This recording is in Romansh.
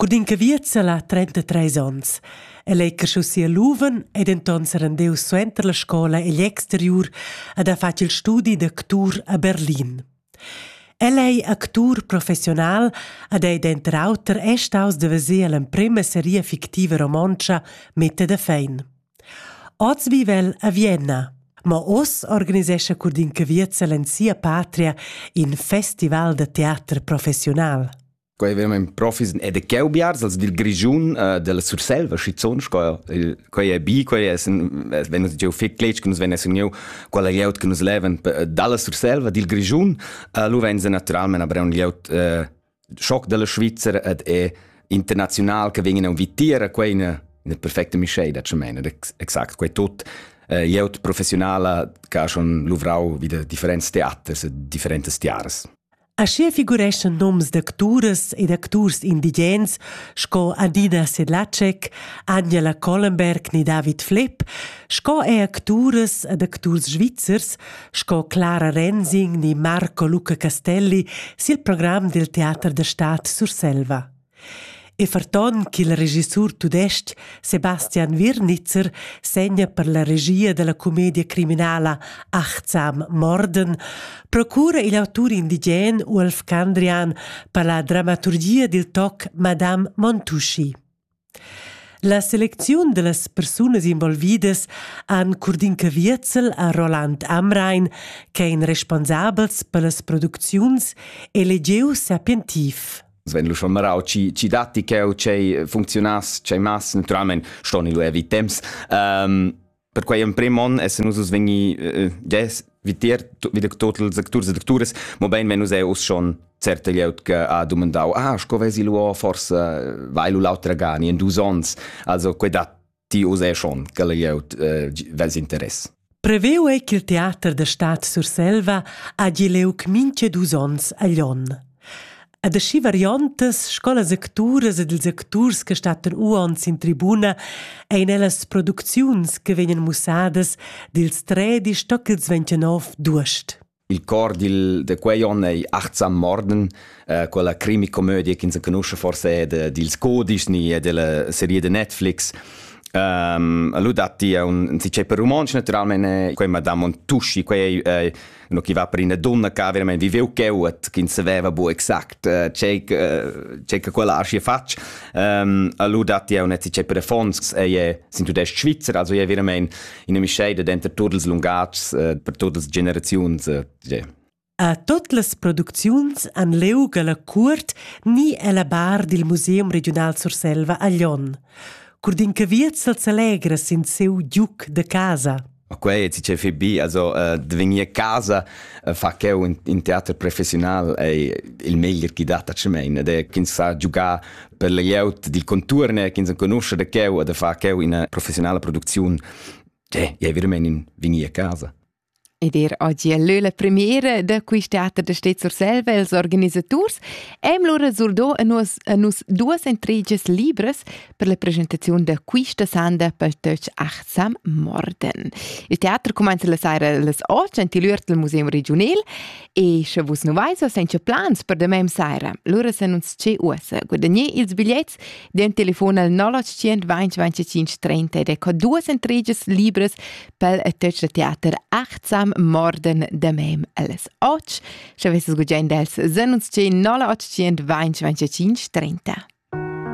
Cun in caviert sala ha trentatres onns. El ei crescius sia luven e denton serendeus suenter la scola egl exteriur ed ha fatg il studi d'actur a Berlin. El ei actur professional ed ei denter auter è staus da veser l'emprema seria fictiva romontscha Mette de Fein. Oz vivel a Vienna, ma oz organisescha Curdin Caviert en sia patria in festival da teater professional. Qua veramein profis ed e cheu biars als dil Grischun uh, della Surselva schizzon sco quei è bi quei è wenn uns jeu fig cletg che nus venes uniu quella glieud che nus leven dalla Surselva dil Grischun uh, lu vein se naturalmente aber un glieud uh, schock della Schweizer ed è international che vegin a vitier quei in in perfecte Michel da chemene exakt quei tot uh, glieud professionala che ha schon luvrau wieder differents theaters e differentes tiaras Aschia figureschan noms d'acturas ed acturs indigens sco Adina Sedlacek, Anja Collenberg ni David Flepp, sco er acturas ed acturs svizzers sco Clara Rensing ni Marco Luca Castelli sil program dil teater da stad Surselva. E ferton ch'il regissur tudestg Sebastian Wirnitzer segna per la regia dalla comedia criminala Achtsam Morden, procura igl autur indigen Uolf Candrian per la dramaturgia dil toc Madame Montuschi. La selecziun dallas persunas involvidas han Curdinka Wierzel a Roland Amrain, che ein responsabels per las producziuns, e legiu sapientiv. Sven lu schon marau ci ci datti cheu chei funcziunas chei mas naturalment ston lu evi temps um, per quei emprem on essen nus vegni uh, ges vitier wieder total secturs e sectures mo bein wenn nus è us schon certe glieud che ha domandau ah sco vesi lu forse weil lu l'autra gani in dus ons also quei dat ti uss schon che glieud eh, vels interess. Preveu ei ch'il teater da Stad Surselva ha gi leuc minche dus ons a Lyon. Ad aschi variantas scolas acturas ed ils acturs che stattan uons in tribuna ein ellas producziuns che vegnan mussadas dils tredi stoc ils 29 d'uost. Il cor dil, de quei onn ei achtsam morden, äh, quella crimi-comödie che ins conosce forse de, dils Codisch ni e della serie de Netflix. Um, lui datti è un, un si c'è per romanzo naturalmente quella Madame Montusci quei è no chi va per una donna che veramente viveu cheuat che non sapeva bu exact uh, c'è uh, c'è che quella arci faccia um, lui datti è un si c'è per Fons è sin tudest Svizzera also è veramente ina mischeida denter tuts ils lungatgs eh, per tutas generaziuns. Eh, a tot las producziuns han leu la cuort ni ella bar dil Museum Regional Surselva a Lyon. Curdin Caviez el s'alegra sin seu giuc de casa. Ma quei ti ce fi bi, also uh, de vegnir casa uh, fa cheu in, in teater professional ei il meglier chi dat a ce mein, ed è ch'ins sa giugar per la glieud dil conturn ch'ins enconusce da cheu e da far cheu ina professionala producziun, eh, è veramente in vini a casa. Ed er oggi è leu la premiera da quei teater da Stet Surselva els organisators. Eim lura surdò a nus, a nus duas intriges libres per la presentazione da questa sanda pel töch achtsam Morden. Il teater cumenza la saira las 8 in il Museum Regional E sche vus nu vais o senza plans per demem saira, lura se nun sce uossa. Guadagner ils bigliets den telefon al 081 20 30 ed ecco duas entriges libres pel teatre teater achtsam morden demem alles och. Sche vesses gugiend els, se nun sce 081 20 30.